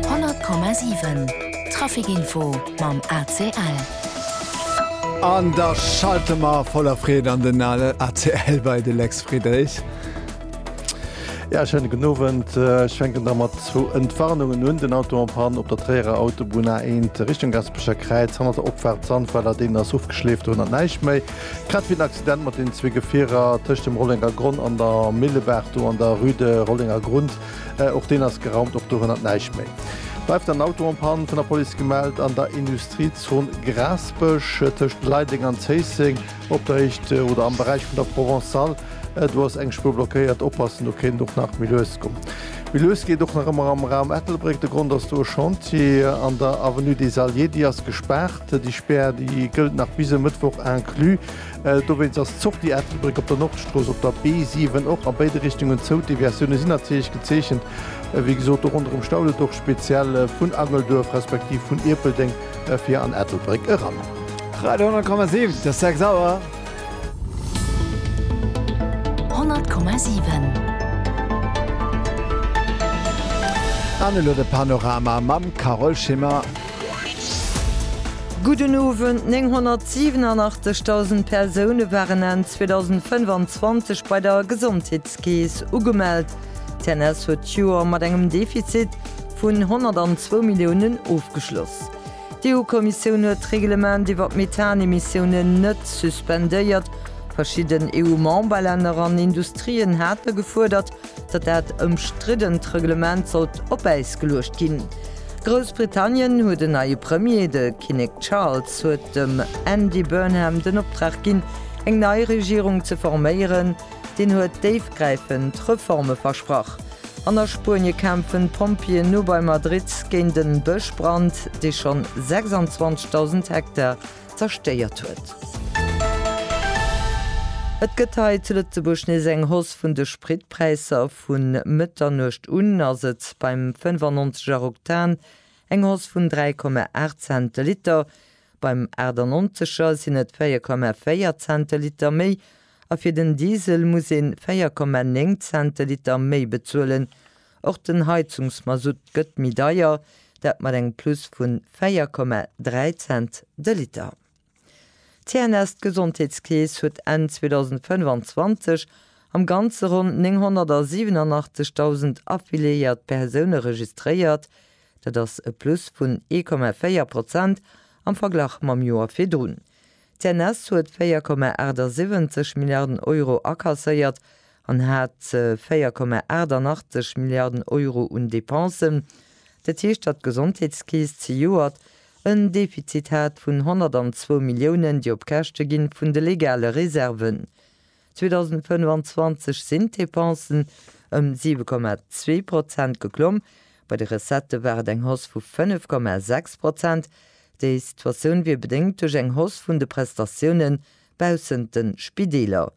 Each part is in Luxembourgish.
100,7 Trafic info mam ACL. An da schalte mer voller Freed an den ACL bei de Lex Friedrich. Ja, schönen guten Abend. Äh, ich fänken da mat zu Entwarnungen un den Auto en Pan op der Träerer Autobunn A1 Richtung Gaspecher Kräiz hannert der Opfahrt Sandweiler den ass ofgeschleeft hun an näicht méi. Grad wie den Accident mat den zwee Gefierer tëscht dem Rollenger Gronn an der Millebaach do an der Rue de Rollenger Grund. Och deen ass geraumt, och dorënner näischt méi. Bleift en Auto en Panne, vun der Police gemellt an der Industriezon Grassbësch tëscht Leideleng an Zéisseng op der Héicht oder am Beräich vun der Provençale. Do ass eng Spuer blockéiert. Oppassen, do kéint et och nach méi lues goen. Méi lues geet och nach ëmmer am Raum Ettelbréck. De Grond ass do e Chantier an der Avenue des Alliés. Déi ass gespaart. Déi Spär, déi gëllt nach bis e Mëttwoch inclus. Dowéinst ass d'Sortie Ettelbréck op der Nordstrooss op der B7 och a béide Richtungen zou. D'Deviatioune sinn natierlech gezeechent, wéi gesot och ronderëm Staulet, och speziell vun Angelduerf respektiv vun Ierpeldeng fir an Ettelbréck eran. Radio 10,7 Et ass 6 Auer. 10,7 An elo de Panorama mam Carole Schimmer. Gudden Owend, 987.000 Persoune waren Enn 2025 bei der Gesondheetskeess ugemellt. D'CNS huet d'Joer mat engem Defizit vun 102 Milliounen ofgeschloss. D'EU-Kommissioun huet d'Reglement iwwer d'Methanemissiounen net suspendéiert. Verschidden EU-Memberlänner an Industrien hate gefuerdert, datt dat ëmstriddent Reglement sollt op Äis geluecht ginn. Groussbritannien huet en neie Premier, de Kinnek Charles huet dem Andy Burnham den Optrag ginn, eng nei Regierung ze forméieren. Deen huet déifgräifend Reforme versprach. An a Spuenie kämpfen d'Pompjeeën no bei Madrid géint en Bëschbrand, dee schonn 26.000 Hektar zerstéiert huet. Et gëtt hei zu Lëtzebuerg nees eng Hausse vun de Spritpräisser. Vu Mëtternuecht un ass et beim 95 er Oktan eng Hausse vun 3,8 Cent de Liter, beim 98 er sinn et 4,4 Cent de Liter méi a fir den Diesel muss ee 4,9 Cent de Liter méi bezuelen, Och den Heizungsmasutt gëtt méi deier, dat mat engem Plus vun 4,3 Cent de Liter. D'CNS, d'Gesondheetskeess, huet Enn 2025 am Ganze ronn 987.000 affiliéiert Persoune registréiert, dat ass e Plus vun 1,4 Prozent am Verglach mam Joer virdrun. D'CNS huet 4,78 Milliarden Euro akasséiert an hat 4,88 Milliarden Euro un Depensen. Dat heescht, datt d'Gesondheetskeess zejoert en Defizit hat vun 102 Milliounen, déi op Käschte gi vun de legale Reserven. 2025 sinn d'Depensen ëm 7,2 Prozent geklomm, bei de Recettë war et eng Hausse vu 5,6 Prozent. Déi Situatioun wier bedéngt duerch eng Hausse vun de Prestatiounen baussent de Spideeler.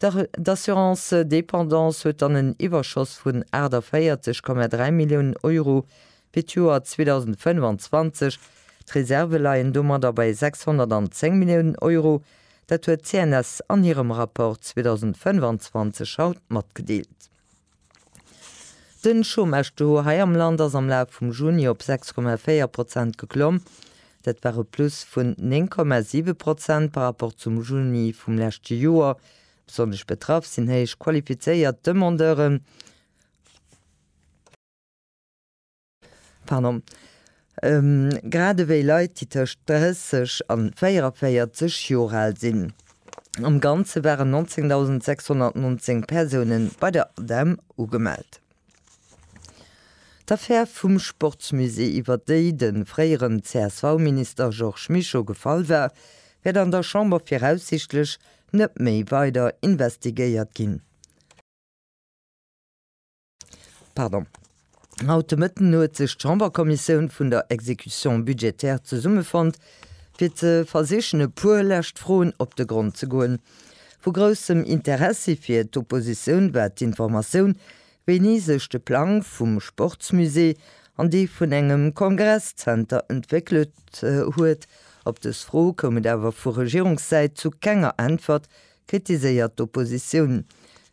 D'Assurance dépendance huet dann en Iwwerschoss vun 48,3 Milliounen Euro fir d'Joer 2025. D'Reserve leien domadder bei 610 Milliounen Euro, Dat huet d'CNS an hirem Rapport 2025 haut matgedeelt. Den Chômage-Taux hei am Land ass am Laf vum Juni op 6,4 Prozent geklomm. Dat war e Plus vun 9,7 Prozent par rapport zum Juni vum leschte Joer. Besonnesch betraff sinn héich qualifizéiert Demandeuren. Pardon. Grad ewéi Leit, déi tëscht 30 a 44 Joer al sinn. Am Ganze waren 19.619 Persounen bei der ADEM ugemellt. D'Affär vum Sportsmusée, iwwer déi de fréieren CSV-Minister Georges Mischo gefall war, wäert an der Chamber viraussichtlech net méi weider investigéiert ginn. Pardon. Haut de Mëtten huet sech d'Chamberkommissioun vun der Exécution budgétaire zesummefonnt, fir ze versichen e puer lescht Froen op de Grond ze goen. Vu groussem Interessi fir d'Oppositioun war d'Informatioun, wéini sech de Plang vum Sportsmusée an dee vun engem Kongresszenter entwéckelt huet. Op dës Fro koum et awer vu Regierungssäit zu kenger Äntwert, kritiséiert d'Oppositioun.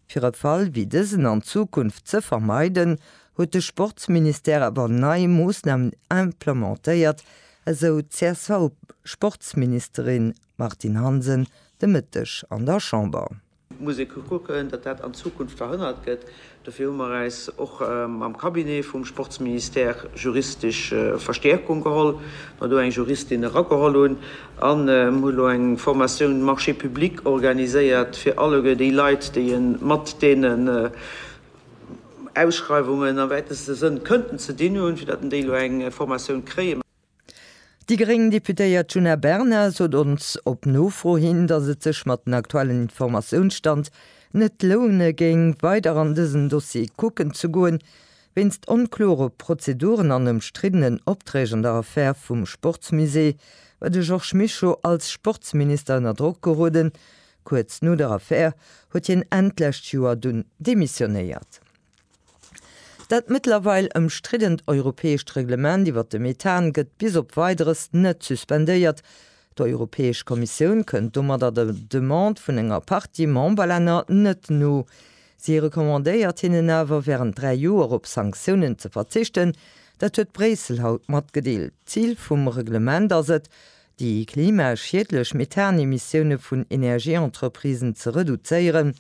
Fir e Fall wéi dësen an Zukunft ze vermeiden, huet de Sportsministère awer nei Moossnamen implementéiert, esou d'CSV-Sportsministerin Martine Hansen de Mëtteg an der Chamber. Et muss ee kucken, datt dat an Zukunft verhënnert gëtt, Dofir hu mer äis och am Cabinet vum Sportsministère juristesch Verstäerkung geholl, mer do eng Juristin erageholl hunn an hu lo eng Formatioun Marchés publics organiséiert fir alleguer déi Leit, déi e mat deenen Ausschreiwungen am wäiteste Sënn kënnten ze dinn hunn, fir datt en déi lo eng Formatioun kréien. Déi gréng Deputéiert Djuna Bernard sot ons op Nofro hin, datt et sech mat den aktuellen Informatiounsstand net loune géing, weider an dësen Dossier kucken ze goen, wéinst onklore Prozeduren an ëmstriddenen Opträg an der Affär vum Sportsmusée war de Georges Mischo als Sportsminister ënner Drock geroden. Kuerz no der Affär huet hien Enn d'lescht Joer dunn demissionéiert. Dat mëttlerweil ëmstriddent europäescht Reglement iwwert de Methan gëtt bis op Weideres net suspendéiert. D'Europäesch Kommissioun kënnt domadder der Demande vun enger Partie Memberlänner net no. Si recommandéiert hinnen awer, wärend dräi Joer op Sanktiounen ze verzichten. Dat huet Bréissel haut matgedeelt. D'Zil vum Reglement ass et, déi klimaschiedlech Methan-Emissioune vun Energieentreprisen ze reduzéieren.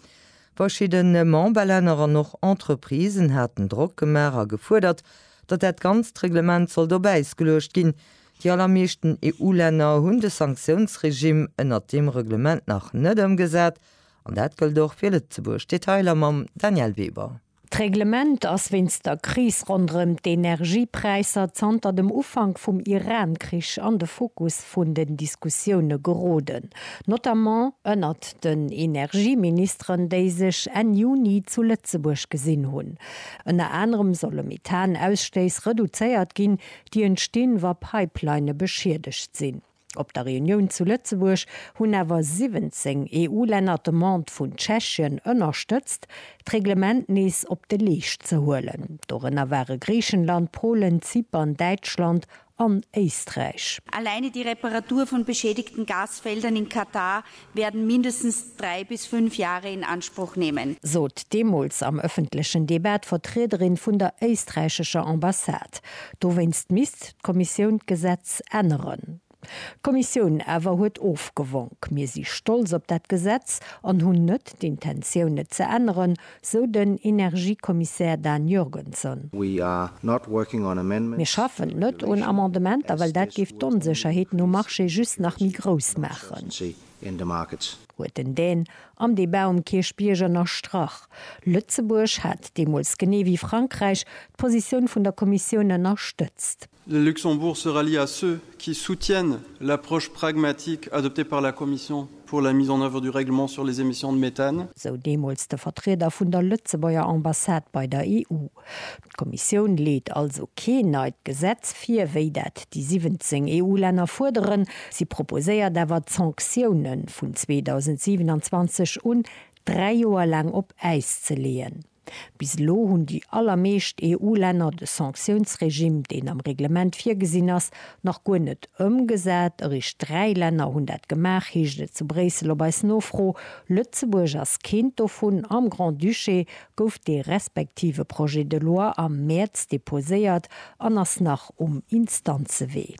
Verschiddene Memberlänner an och Entreprisen haten Drock gemaach a gefuerdert, datt dat ganzt Reglement sollt op Äis geluecht ginn. Déi allermeeschten EU-Länner hunn de Sanktiounsregimm ënnert deem Reglement nach net ëmgesat, an dat gëllt och fir Lëtzebuerg. Detailer mam Danièle Weber. D'Reglement ass wéinst der Kris ronderëm d'Energiepräisser zanter dem Ufank vum Iran-Krich an de Fokus vun den Diskussioune geroden, notamment ënnert den Energieministeren, déi sech Enn Juni zu Lëtzebuerg gesinn hunn. Ënner anerem solle Methan-Ausstéiss reduzéiert ginn, déi entstinn, wa Pipelinne beschiedegt sinn. Op der Reunioun zu Lëtzebuerg hunn awer 17 EU-Länner d'Demande vun Tschechien ënnerstëtzt, d'Reglement nees op de Leescht ze huelen. Dorënner ware Griichenland, Polen, Zypern, Däitschland an Éisträich. Alleine die Reparatur von beschädigten Gasfeldern in Katar werden mindestens drei bis fünf Jahre in Anspruch nehmen. Sot deemools am ëffentlechen Debat d'Vertriederin vun der éisträichescher Ambassade. Dowéinst misst d'Kommissioun d'Gesetz änneren. D'Kommissioun awer huet ofgewonk, Mir si stolz op dat Gesetz an hunn net d'Intentioun et ze änneren, sou den Energiekommissär Dan Jurgenson. Mir schaffen net un Amendementer, well dat géif d'Onsécherheeten um Marché just nach méi grouss maachen, huet den Dan am Debat um Kierchbierg ënnerstrach. Lëtzebuerg hat deemools, genee wéi Frankräich, d'Positioun vun der Kommissioun ënnerstëtzt. Le Luxembourg se rallie à ceux qui soutiennent l'approche pragmatique adoptée par la Commission pour la mise en œuvre du règlement sur les émissions de méthane. Sou deemools de Vertrieder vun der Lëtzebuerger Ambassade bei der EU. D'Kommissioun leet also keen neit Gesetz vir, wéi dat déi 17 EU-Länner fuerderen. Si proposéiert awer, d'Sanktiounen vun 2027 un dräi Joer laang op Äis ze leeën. Bis elo hunn déi allermeescht EU-Länner de Sanktiounsregime, deen am Reglement virgesinn ass, nach guer net ëmgesat. Eréischt dräi Länner hunn dat gemaach, heescht et zu Bréissel op eis Nofro. Lëtzebuerg ass keent dovun. Am Grand-Duché gouf dee respektive Projet de loi am Mäerz deposéiert an ass nach um Instanzewee.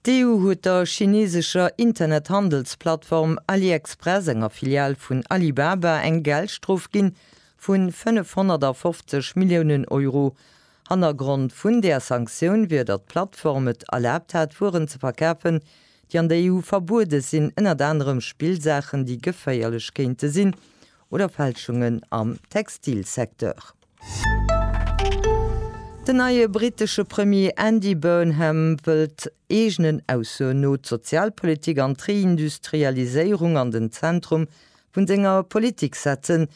D'EU huet der chineesescher Internethandelsplattform AliExpress, enger Filial vun Alibaba, eng Geldstrof ginn vun 550 Milliounen Euro. Hannergrond vun där Sanktioun wier, datt d'Plattform et erlaabt hat, Wueren ze verkafen, déi an der EU verbuede sinn, ënnert anerem Spillsaachen, déi geféierlech kéinte sinn, oder Fälschungen am Textilsecteur. Den neie brittesche Premier Andy Burnham wëllt eegenen Aussoen no d'Sozialpolitik an d'Reindustrialiséierung an den Zentrum vun senger Politik setzen.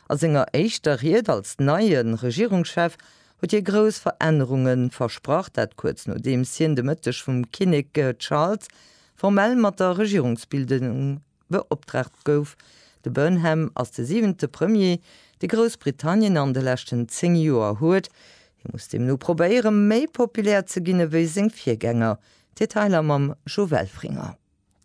A senger éischter Ried als neie Regierungschef huet hie grouss Verännerunge versprach, dat kuerz nodeems hien de Mëtteg vum Kinnek Charles formell mat der Regierungsbildung beoptraagt gouf. De Burnham ass de siwente Premier, dee Groussbritannien an de leschten zéng Joer huet. Hie muss deemno probéiere méi populär ze ginn ewéi seng Virgänger. Detailer mam Jo Welfringer.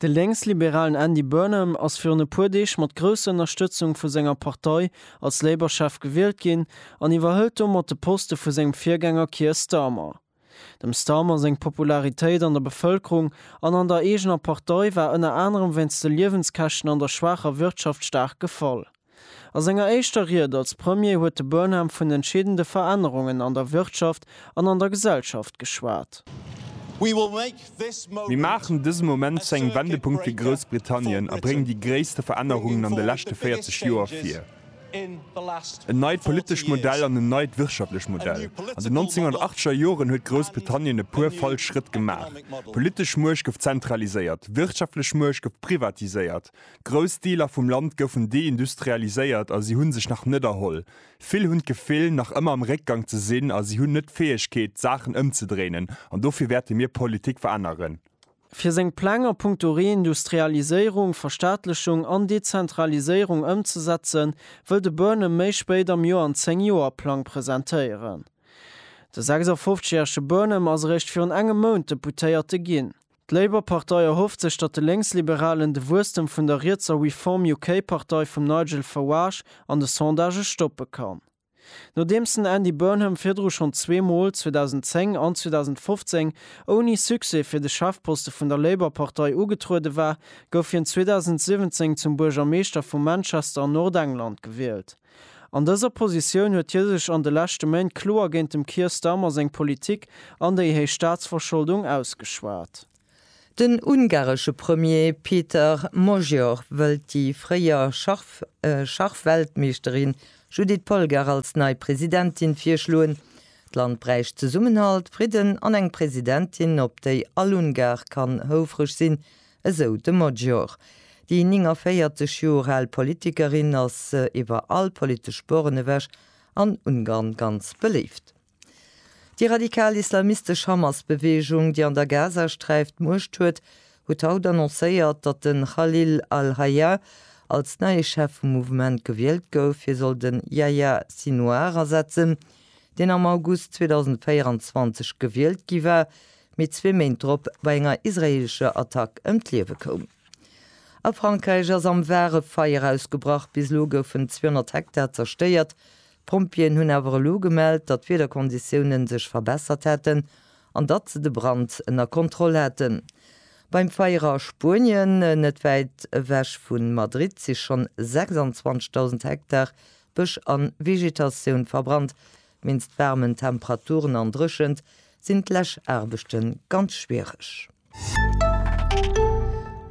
De Lénksliberalen Andy Burnham ass virun e puer Deeg mat grousser Ënnerstëtzung vu senger Partei als Labour-Chef gewielt ginn an iwwerhëlt domat de Poste vu sengem Virgänger Keir Starmer. Dem Starmer seng Popularitéit an der Bevëlkerung an an der eegener Partei war ënner anerem wéinst de Liewenskäschten an der schwaacher Wirtschaft staark gefall. A senger éischter Ried als Premier huet de Burnham vun entscheedende Verännerungen an der Wirtschaft an an der Gesellschaft geschwat. Mir maachen dëse Moment zu engem Wendepunkt fir Groussbritannien a bréngen déi gréisste Verännerungen an de leschte 40 Joer vir. En neit politescht Modell an en neit wirtschaftlech Modell. An den 1980er Joren huet Groussbritannien e puer falsch Schrëtt gemaach. D'politesch Muecht gouf zentraliséiert, d'wirtschaftlech Muecht gouf privatiséiert, grouss Deeler vum Land goufen deindustrialiséiert a si hu sech nach net erholl. Vill hunn d'Gefill, nach ëmmer am Réckgang ze sinn a si hunn net d'Fäegkeet, d'Saachen ëmzedréinen. An dofir wäerte mir Politik veränneren. Fir seng Pläng a Punkto Reindustrialiséierung, Verstaatlechung an Dezentraliséierung ëmzesetzen, wëll de Burnham méi spéit am Joer en Zéng-Joer-Plang presentéieren. De 56 järege Burnham ass eréischt virun engem Mount Deputéierte ginn. D'Labour-Partei erhofft sech, datt de Lénksliberalen de Wuesstem vun der rietser Reform UK-Partei vum Nigel Farage an de Sondagë stoppe kann. Nodeems den Andy Burnham virdru schonn zwee Mol, 2010 an 2015, ouni Succès fir de Chefposte vun der Labour-Partei ugetruede war, gouf hien 2017 zum Buergermeeschter vu Manchester an Nordengland gewielt. An dëser Positioun huet hie sech an de leschte Méint kloer géint dem Keir Starmer seng Politik an déi héich Staatsverscholdung ausgeschwat. Den ungaresche Premier Péter Magyar wëllt déi fréier Schachweltmeeschterin Judit Polgár als nei Presidentin virschloen. D'Land bräicht Zesummenhalt, Fridden an eng Presidentin, op déi all Ungar kann houfreg sinn, esou de Magyar. Déi 49 Joer al Politikerin ass iwwer all politesch Sporen ewech an Ungarn ganz beléift. Déi radikal islamistesch Hamas-Beweegung, déi an der Gazasträif d'Muecht huet, huet haut annoncéiert, datt de Khalil al-Hayya als neie Chef vum Mouvement gewielt gouf. Hie soll de Yahya Sinouar ersetzen, deen am August 2024 gewielt gi war, mee zwee Méint drop bei enger israeelescher Attack ëm d'Liewe koum. A Frankräich ass am Var e Feier ausgebrach. Bis elo goufen 200 Hektar zerstéiert, D'Pompjeeën hunn awer elo gemellt, datt d'Wiederkonditiounen sech verbessert hätten an datt se de Brand ënner Kontroll haten. Beim Feier a Spuenien, net wäit ewech vu Madrid, si schonn 26.000 Hektar Bësch a Vegetatioun verbrannt. Wéinst waarmen Temperaturen an Dréchent sinn d'Läschaarbechte ganz schwiereg.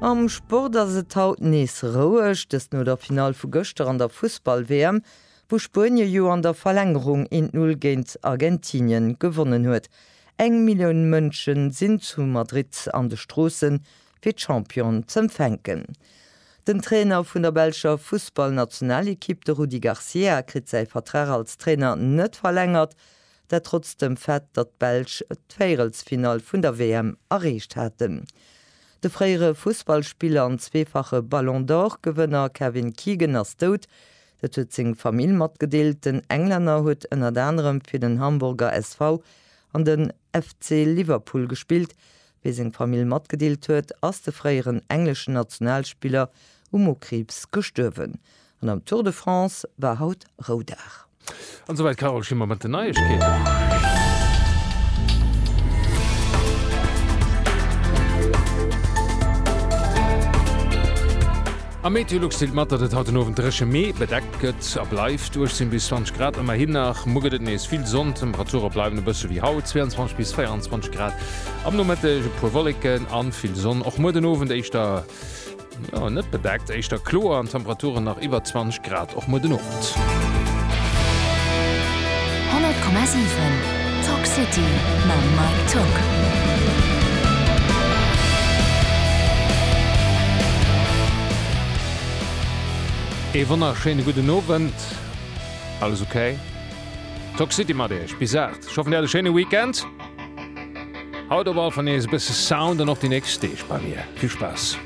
Am Sport ass et haut nees roueg, dëst no der Finall vu gëschter an der Fussball-WM, wou Spuenie jo an der Verlängerung 1 Null géint Argentinien gewonnen huet. Eng Millioun Mënschen sinn zu Madrid an de Stroossen, fir d'Championen z'empfänken. Den Trainer vun der belscher Fussball-Nationalekipp, de Rudi Garcia, kritt säi Vertrag als Trainer net verlängert, Dat trotz dem Fait, datt d'Belsch d'Véierelsfinall vun der WM erreecht haten. De fréiere Fussballspiller an zweefache Ballon d'Or-Gewënner Kevin Keegan ass dout. Dat huet seng Famill matgedeelt. Den Englänner huet ënnert anerem fir den Hamburger SV an de FC Liverpool gespillt. Wéi seng Famill matgedeelt huet, ass de fréieren engleschen Nationalspiller u Mokriibs gestuerwen. An am Tour de France war haut Roudag. An souwäit d'Carole Schimmer mat den Neiegkeeten. Am MeteoLux deelt mat, datt et haut den Owend dréche mee bedeckt gëtt a bleift, 18 bis 20 Grad ëmmerhin nach. Muer gëtt et nees vill Sonn, d'Temperature bleiwen e bësse wéi haut, 22 bis 24 Grad. Am Nomëtteg e puer Wolleken a vill Sonn, och muer den Owend éischter. Jo, net bedeckt, éischter kloer an Temperaturen nach iwwer 20 Grad och muer den Owend. 100,7 Talk City mam Mike Tück. Ee wonnerschéine gudden Owend. Alles okay? Talk City mat Iech bis 8. Ech hoffen, Dir hat e schéine Weekend. Haut op all Fall nees e bësse Sound an och déi nächst Deeg bei mir. Vill Spaass!